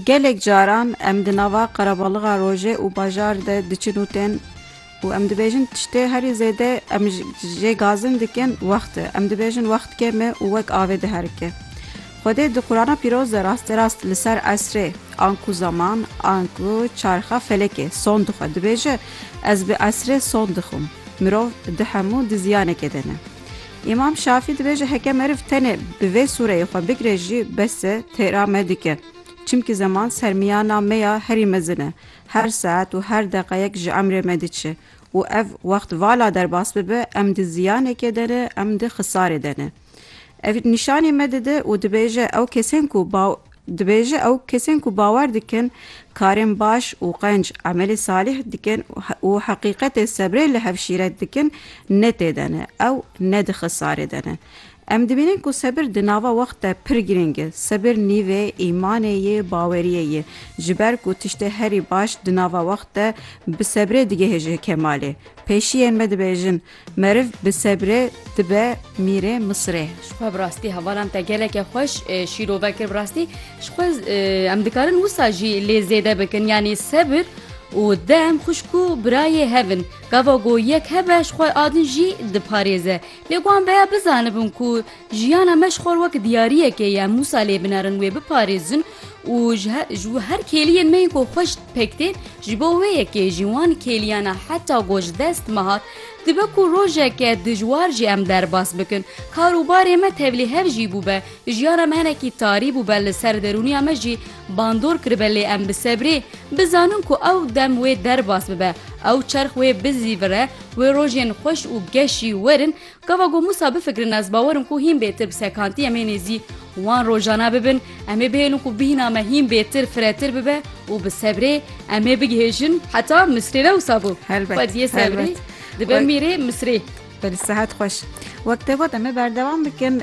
Gelek caran em di nava qerebalixa rojê û bajar de diçin û tên û em dibêjin tiştê herî zêde em jê gazin dikin wext e. Em dibêjin wext kêm e û wek avê diherike. Xwedê di Qurana pîroz de rastê rast li ser esrê anku zeman anku çarxa felekê son dixwe dibêje, Ez bi esrê son dixwim. Mirov di hemû di ziyanekê de ne. Îmam Şafî dibêje heke meriv tenê bi vê sûreyê xwe bigire jî bes e têra me dike. Çimkî zeman sermiyana me ya herî mezin e. Her saet û her deqeyek ji emrê me diçe û ev wext vala derbas bibe em di ziyanekê de ne em di xisarê de ne. Ev nîşanî me dide û dibêje ew kesên ku Dibêje ew kesên ku bawer dikin karên baş û qenc emelê salîh dikin û heqîqetê sebrê li hev şîret dikin ne tê de ne, ew ne di xisarê de ne. Em dibînin ku sebir di nava wext de pir girîng e. Sebir nîvê îmanê yê, baweriyê yê. Ji ber ku tiştê herî baş di nava wext de bi sebrê digihêje kemalê. Pêşiyên me dibêjin, Meriv bi sebre dibe mîrê Misirê. Ji xwe bi rastî hevalan te geleke xweş şîrove kir bi rastî ji xwe em dikarin wisa jî lê zêde bikin yanî sebir û dem xwişk û birayê hev in gava ku yek hebe ji xwe a din jî diparêze lê wan beya bizanibin ku jiyana me ji xwe wek diyariyekê ye em wisa lê binerin wê biparêzin û ji her kêliyên me yên ku xweş Pek tên, ji bo wê yekê jî wan kêliyana heta ku ji dest me hat, dibe ku rojeke dijwar jî em derbas bikin. Kar û barê me tevlî hev jî bûbe, jiyana me hinekî tarî bûbe li ser derûniya me jî bandor kiribe lê em bi sebrê bizanin ku ew dem wê derbas bibe, ew çerx wê bizîvire, wê rojên xweş û geşî werin Gava ku Mûsa bifikirin ez bawer im ku hîn bêtir bi sekantî em ê nêzî wan rojana bibin, em ê bihêlin ku bîhna me hîn bêtir firetir bibe û bi sebrê em ê bigihêjin heta Misrê ne wisa bû xwediyê sebrê dibe mîrê Misrê. Belê sehet xweş. Wek te got em ê berdewam bikin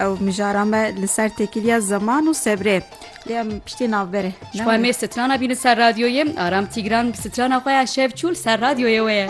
ew mijara me li ser têkiliya zeman û sebrê lê em piştî navberê. Ji bo em ê strana bînin ser radyoyê Aram Tîgran bi strana xwe ya Şevçû li ser radyoyê we ye.